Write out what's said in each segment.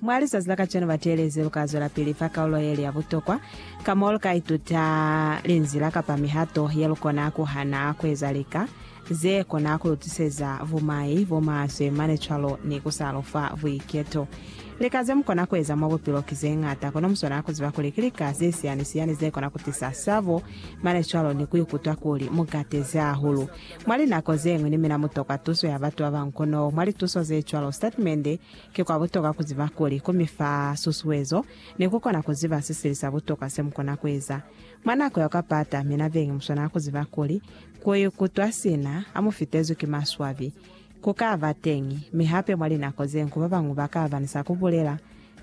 Mwa lizazi la kacenu bateelezi lu ka zwelapili fa kaulo ye li ya butokwa, ka mo lu ka ituta linzila kapa mihato ye lu kona ku hana ku eza lika ze kona ku lu tiseza bumai bo maswe mane cwalo ni ku sa lu fa buiketo. Lika ze mu kona ku eza mwa bupilo ki ze ñata, kono mu swanela ku ziba kuli ki lika ze siyani-siyani ze kona ku tisa sabo mane cwalo ni ku ikutwa kuli mu katezi hahulu. Mwa linako ze ñwi ni mina mu tokwa tuso ya batu ba bañwi kono mwa lituso ze cwalo sitatimende ki kwa butokwa ku ziba kuli ku mi fa susuezo ni ku kona ku ziba se sili sa butokwa se mu kona ku eza. Mwa nako ya kwa pata, mina beñi mu swanela ku ziba kuli ku ikutwa sina ha mu fitezwi ki maswabi ku ka ba teñi, mi hape mwa linako ze ñwi ba bañwi ba ka ba ni sa ku bulela.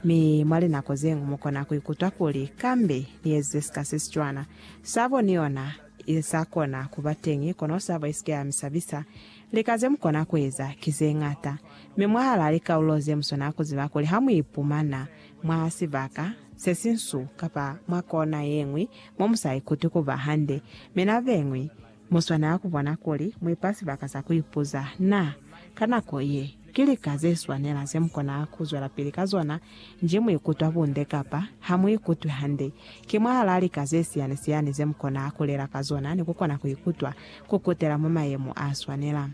Mi mwa linako ze ñwi mu kona ku ikutwa kuli, Kambe ni ezize sika se si cwana. Sabo ni yona I sa kona ku ba teñi, kono sabo i si ke ya mi sabisa. Lika ze mu kona ku eza ki ze ñata. Mi mwahalaa likaulo ze mu swanela ku ziba kuli ha mu ipumana mwa sibaka se si nsu kapa mwa kona ye ñwi mo mu sa ikuti ku ba hande, mi na ze ñwi, mu swanela ku bona kuli mu ipa sibaka sa ku ipuza, Na, ka nako ye, Ki lika ze swanela ze mu kona ku zwelapili ka zona nji mu ikutwa bunde kapa ha mu ikutwi hande. Ki mwahalaa lika ze siyani-siyani ze mu kona ku lela ka zona ni ku kona ku ikutwa ku kutela mwa mayemo a swanela.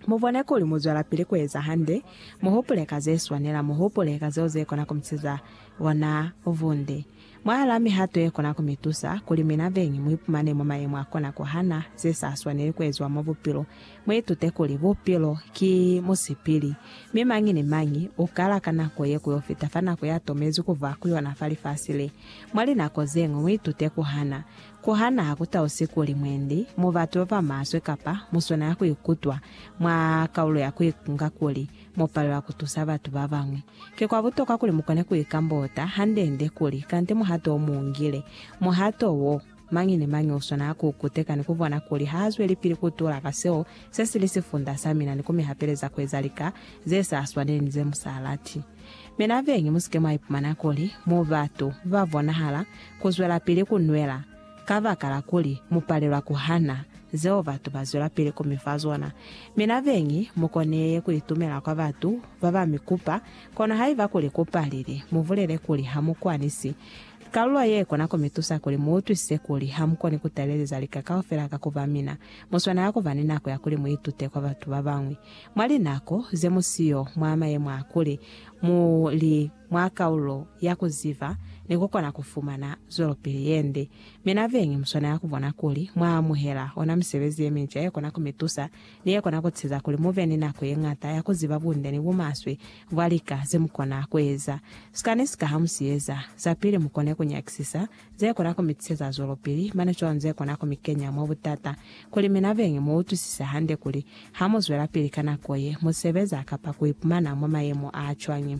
Mu bone kuli mu zwelapili ku eza hande, mu hupule ka ze swanela, mu hupule ka zeo ze kona ku mu siza ona bunde. Mwahalaa mihato yekona kumitusa kuli mina beñi muipumane mwa mayemo akona kuhana zesaswaneli kueziwa mwa bupilo, muitute kuli bupilo ki musipili, mi mañi ni mañi ukala ka nako ye kuyofita fa nako yatomezwi kuba ku yona fa lifasi le. Mwa linako zeñwi muitute kuhana. Kuhana hakutausi kuli mwendi, mubatu babamaswe, kapa muswana yakuikutwa mwa kaulo ya kuikunga kuli, mo palelwa ku tusa batu ba bañwi. Ki kwa butokwa kuli mu kone ku ikambota hande-nde kuli, kante muhato o mu ngile. Muhato wo, mañi ni mañi o swanela ku u kuteka ni ku bona kuli ha zwelipili ku tula ka seo se si li sifunda sa mina ni ku mi hapeleza ku eza lika ze sa swaneli ni ze mu sa lati. Mina beñi, mu si ke mwa ipumana kuli mu batu ba bonahala ku zwelapili ku nwela Kabakala kuli mupalelwa kuhana zeo batu bazwelapili kumifa zona, mi nabeñi mukoneye kuitumela kwa batu babamikupa. Kono haiba kuli kupalile, mubulele kuli hamukwanisi. Kalulo ye ikona kumitusa kuli muutwisise kuli hamukoni kutabeleza lika kaufela ka kuba mina. Muswanela kuba ni nako ya kuli muitute kwa batu babañwi. Mwa linako zemusiyo mwa mayemo a kuli mu li. mwa kaulo ya ku ziba ni ku kona ku fumana zwelopili ye nde. Mi na beñi mu swanela ku bona kuli mwa amuhela ona misebezi ye minca ye kona ku mi tusa ni ye kona ku ceza kuli mu be ni nako ye ñata ya ku ziba bunde ni bumaswe bwa lika ze mu kona ku eza. Sikani sika ha mu si eza, zapili mu kone ku nyakisisa Ze kona ku mi tiseza zwelopili, mane cwalo ze kona ku mi kenya mwa butata. Kuli mina beñi mu utwisise hande kuli, ha mu zwelapili ka nako ye mu sebeza kapa ku ipumana mwa mayemo a cwañi,